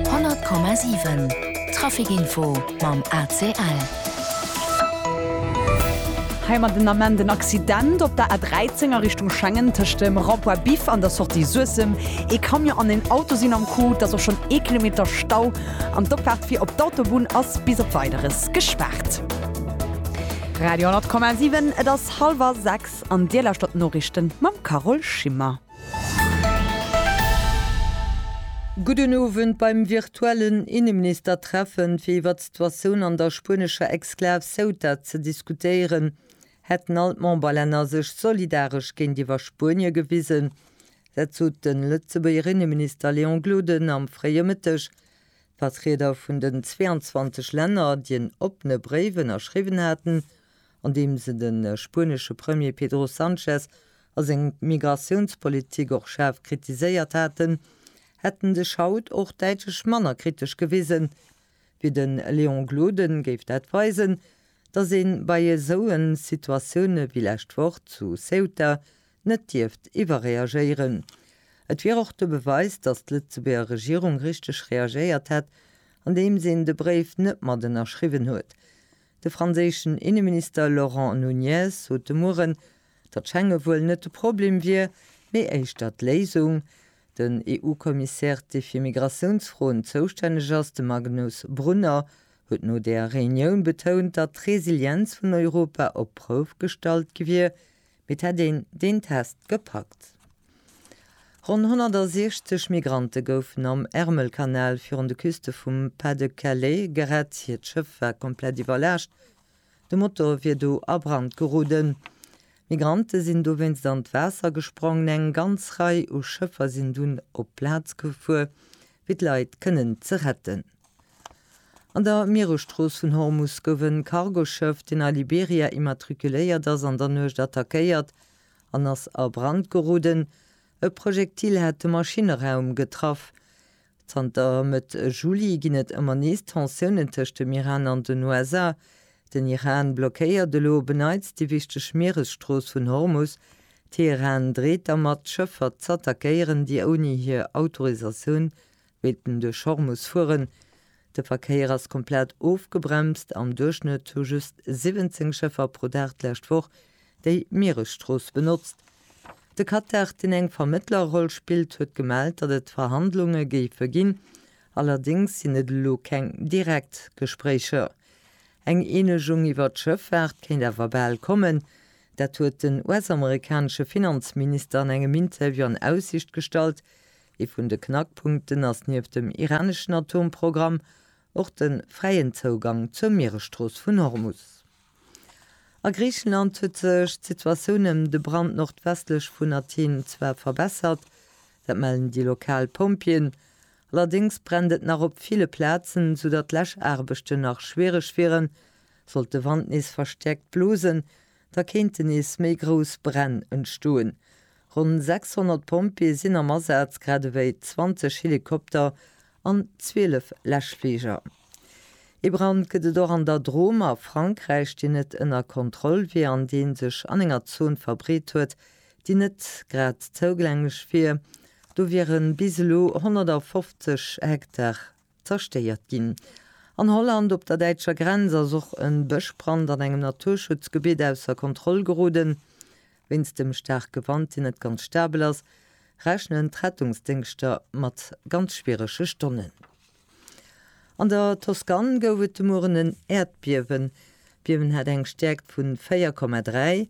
100,7 Traficinfo mam ACL. Hei mat den Ament en Accident op der A13 a Richtung Schengen tëscht dem Rond-point Biff an der Sortie Suessem. Ee Camion an en Auto sinn am Coup, et ass och schonn ee Kilometer Stau an d'Opfaart fir op d'Autobunn ass bis op Weideres gespaart. Radio 100,7 Et ass hallwer 6 an Dir lauschtert d'Noriichten mam Carole Schimmer. Gudden Owend. Beim virtuellen Inneministertreffen, fir iwwert d'Situatioun an der spuenescher Exklav Ceuta ze diskutéieren, hätten all d'Memberlänner sech solidaresch géintiwwer Spuenie gewisen. Dat sot de Lëtzebuerger Inneminister Léon Gloden am fréie Mëtteg. D'Vertrieder vun den 22 Länner, déi en oppene Bréif ënnerschriwwen haten, an deem se de spuenesche Premier Pedro Sanchez a seng Migratiounspolitik och schaarf kritiséiert haten, hätten sech haut och däitlech manner kritesch gewisen. Wéi de Léon Gloden géif dat weisen, datt ee bei esou en Situatioune wéi lescht Woch zu Ceuta net dierft iwwerreagéieren. Et wier och de Beweis, datt d'Lëtzebuerger Regierung richteg reagéiert hätt, andeems een de Bréif net mat ënnerschriwwen huet. De franséischen Inneminister Laurent Nunez sot de Mueren, datt Schengen wuel net de Problem wier, mee éischter d'Léisung. Den EU-Kommissär, dee fir Migratiounsfroen zoustänneg ass, de Magnus Brunner, huet no där Reunioun betount, datt d'Resilienz vun Europa op d'Prouf gestallt gi wier, Mee et hätt een deen Test gepackt. Ronn 160 Migrante goufen am Ärmelkanal virun de Küste vum Pas-de-Calais gerett. Hiert Schëff war komplett iwwerlaascht, de Motor wier do a Brand geroden. D'Migrante sinn dowéinst an d'Waasser gesprongen. Eng ganz Rei u Schëffer sinn dunn op d'Plaz gefuer, fir d'Leit kënnen ze retten. An der Mieresstrooss vun Hormus gouf en Cargoschëff, deen a Liberia immatrikuléiert ass, an der Nuecht attackéiert an ass a Brand geroden. E Projektil hat de Maschinneraum getraff. Zanter Mëtt Juli ginn et ëmmer nees Tensiounen tëscht dem Iran an den USA. Den Iran blockéiert elo op e Neits déi wichteg Mieresstrooss vun Hormus. Teheran dreet dermat, d'Schëffer z'attackéieren, déi ouni hir Autorisatioun Wéilten duerch Horr muss fueren. De Verkéier ass komplett ofgebremst. Am Duerchschnëtt hu just 17 Schëffer pro Dag d'lescht Woch déi Mieresstrooss benotzt. De Qatar, deen eng Vermëttlerroll spillt, huet gemellt, datt et Verhandlunge géife ginn. Allerdéngs sinn et elo keng direkt Gespréicher. Eng Eenegung iwwer d'Schëffaart kéint awer bal kommen. Dat huet den US-amerikanesche Finanzminister an engem Interview an Aussicht gestallt, Ee vun de Knackpunkten ass nieft dem iraneschen Atomprogramm och de fräien Zougang zur Mieresstrooss vun Hormus. A Griichenland huet sech d'Situatioun ëm de Brand nordwestlech vun Athen zwar verbessert, dat mellen déi lokal Pompjeeën. Allerdéngs brennt et nach op ville Plazen, soudatt Läschaarbechten nach schwiereg wieren, sollt de Wand nees verstäerkt blosen. Da kéinte nees méi grouss Bränn entstoen. Ronn 600 Pompjeeë sinn am Asaz, grad ewéi 20 Helikopter an 12 Läschfliger. Ee Brand gëtt et och an der Drôme a Frankräich, deen net ënner Kontroll wier an dee sech an enger Zon verbreet huet, déi net grad zougänglech wier. Do wiere bis elo 150 Hektar zerstéiert ginn. An Holland, op der däitscher Grenz, ass och e Bëschbrand an engem Naturschutzgebitt ausser Kontroll geroden. Wéinst dem staarke Wand, deen net ganz stabel ass, rechnen d'Rettungsdéngschter mat ganz schwierege Stonnen. An der Toskan gouf et de Mueren en Äerdbiewen. D'Biewen hat eng Stäerkt vu 4,3.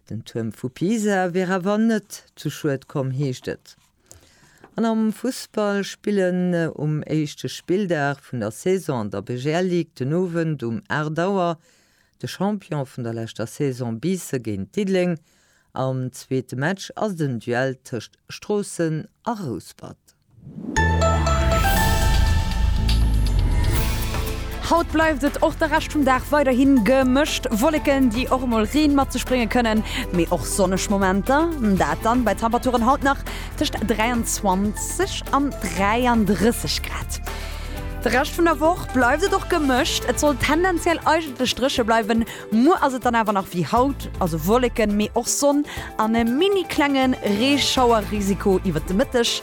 Den Tuerm vu Pisa wier awer net zu Schued komm, heescht et. An am Fussball spillen um éischte Spilldag vun der Saison an der BGL Ligue den Owend um 8 Auer de Champion vun der leschter Saison Biisse géint Diddeleng. Am zweete Match ass et en Duell tëscht Stroossen a Rouspert. Haut bleift et och de Rescht vum Dag weiderhi gemëscht, Wolleken, déi och emol Reen mat sech brénge kënnen, mee och sonneg Momenter, dat dann bei Temperaturen haut nach tëscht 23 an 33 Grad. De Rescht vun der Woch bleift et och gemëscht, et soll tendenziell eigentlech dréche bleiwen, muer ass et dann awer nach wéi haut, also Wolleken, mee och Sonn an e mini klenge Reeschauerrisiko iwwert de Mëtteg.